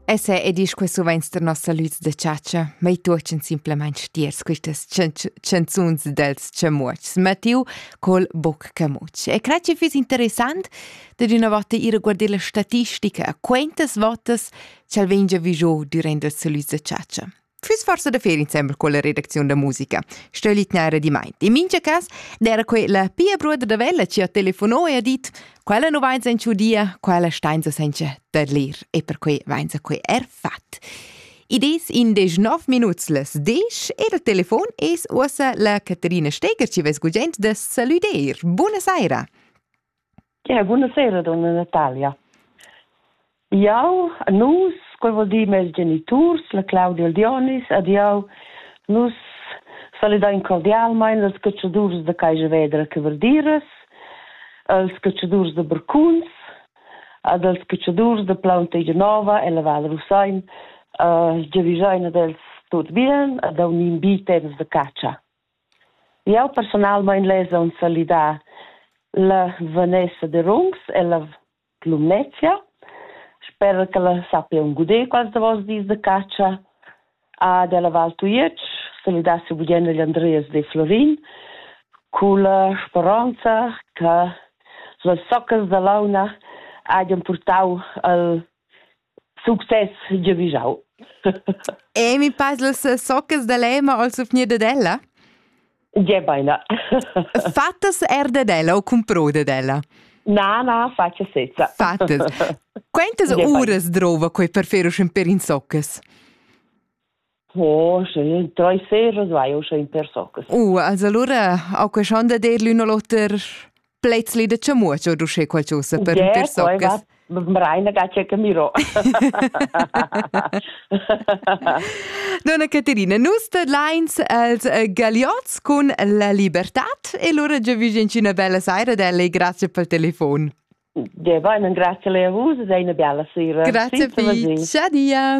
Essa ed isch que suvains der nossa lüz da chatscha, mei tuochen simplamaing stiers quistas chanzuns dels chamuotschs. Mattiu col boc camuotsch. E cred chi füss interessant dad üna vota ir a guarder la statistica a quantas votas ch'el vegn già vigiò dürant la lüz da chatscha. füss forsa da fer insembel con la redacziun da musica. Sto litnare di mai. In mincha cas era quella pia bruder da Vella ci ha telefono e ha dit quella non vain senza dia, quella stainsa senza da ler e per quei vain sa quei er fat. Ides in deg nov minuts les dec e il telefon es uossa la Caterina Steger ci vess gugent da saluder. Buona saira! Ja, buonasera donna Natalia. Jau, nus, quel vuol dir mes geniturs, la Claudia e il Dionis, ed jau, nus salidain cordialmain els catschadurs da Caiavedra che Verdiras, als catschadurs da Bercuns ed als catschadurs da Plaun Tegenova e la Val Rusain uh, giavisain ad els tut bien ed a unin bi temps da catscha. Jau persunalmain less aunc salidar la Vanessa Derungs ella Lumnezia. Sper che ella sappia aunc guder quels davos dis da catscha ad ella Val Tujetsch salidassi bugen agl Andreas De Florin culla speronza che las soccas da launa hagien purtau al Success giavischau. E mi pass las soccas da lema al sufgnir ded ella? Ge beina. Fattas er ded ella o comprò ded ella? Na, na, faccia sezza. Fattas. Quantas uras drova quei per fer uschen per in soccas? Oh, drei seiras vai o in per soccas. Uh, also allora ho que schon da dir l'un o l'oter plezli da chamuaccio du sche qualcosa per yeah, per soccas. Mraina gacia camiro. Donna Caterina, nus de Lines als uh, Galiots con la libertad e lura già vi una bella saira da lei, grazie pel telefon. Ja, va, grazie a vus, sei una bella sera. Grazie, Ciao dia.